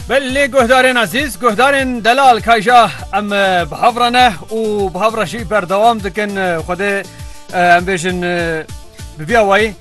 Belê guhdarên ezîz, guhdarên delal kayja em bi hev re ne û bi hev re jî berdewam dikin Xwedê em bêjin bi vî awayî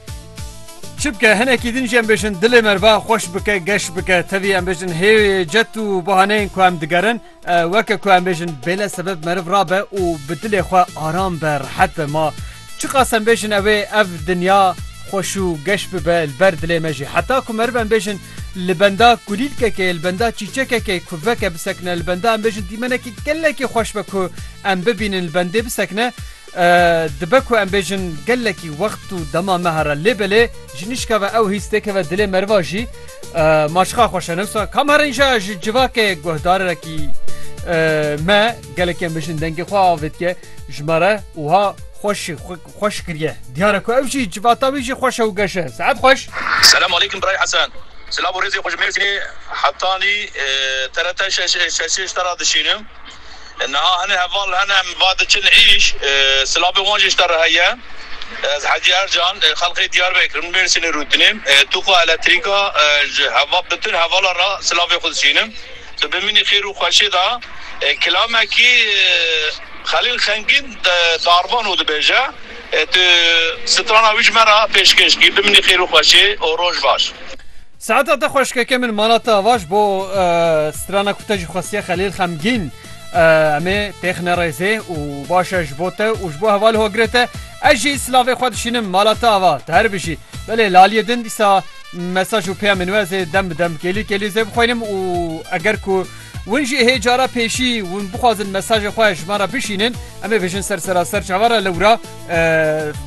çi bike hinekî din jî em bêjin dilê merva xweş bike geş bike tevî em bêjin hê cet û bahaneyên ku em digerin Weke ku em bêjin bêle sebeb meriv rabe û bi dilê xwe aram be, rehet be. Ma çiqas em bêjin ew ê ev dinya xweş û geş bibe li ber dilê me jî. Heta ku meriv em bêjin li benda kulîlkekê, li benda çîçekekê ku veke bisekine, li benda em bêjin dîmenekî gelekî xweş be ku em bibînin li bendê bisekine, Dibe ku em bêjin gelekî wext û dema me here lê belê ji nişka ve ew hîs têkeve dilê meriva jî ma çiqa xweş e newsa kam here înşa ji civakê guhdarekî me gelekî em bêjin dengê xwe avê dike ji me re wiha xweşî xweş kiriye diyare ku ew jî civata wî jî xweş e û geş e saet xweş. Selam aleykum Biray Hesen. Silav û rêzê xwe ji Mêrsînê Hetanî TRT şeş ê şeş ê ji te re dişînim. Niha hinek heval hene em va diçin îş, silavên wan jî ji te re heye. Ez Hedî Ercan, xelkê Diyarbekir im, Mêrsînê rûtinê. Tûka elektrîka ji heval bi tun hevala re silavê xwe dişînim. Tu bimînî xêr û xweşê de. Kilamekî Xelîl Xengîn darvan û dibêje, Tu strana wî ji me re pêşkêş kî. Bimînî xêr û xweşê û roj baş. Saeta te xweş keke min mala te ava ji bo strana ku te jî xwestiye Xelîl xemgîn em ê têx nerêzê û baş e ji bo te û ji bo hevalê hogirê te ez jî silavê xwe dişînim mala te ava tu her bijî belê laliyê din dîsa mesaj û peyamên we ez ê dem bi dem kêlî kêlî zê bixwînim û eger ku win jî hê cara pêşî win bixwazin mesajê xwe ji me re bişînin em ê bijin ser seraser çawa re lewra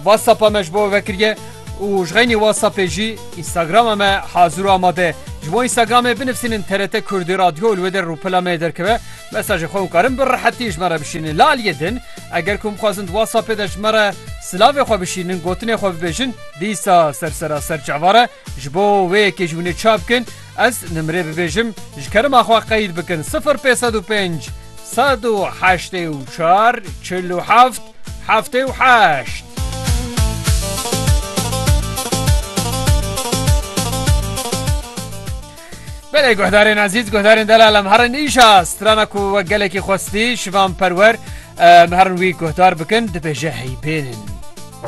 whatsapp a me ji bo vekiriye. û ji xeynî WhatsAppê jî Instagrama me hazir û amade ye. Ji bo Instagramê binivîsînin TRT Kurdî Radyo û li wê der rûpela me yê derkeve. Mesajê xwe hûnkarin bi rehetî ji me re bişînin. Li aliyê din eger ku hûn bixwazin di WhatsAppê de ji me re silavê xwe bişînin, gotinê xwe bibêjin, dîsa ser sera ser çavare ji bo wê yekê ji hûnê çavkin. Ez nimrê bibêjim ji kerema xwe qeyd bikin sifir pênc sed û pênc sed û heştê û çar çil û heft heftê û heşt. Belê guhdarên ezîz guhdarên delal em herin îşa strana ku we gelekî xwestî şivan perwer em herin wî guhdar bikin dibêje heybênin.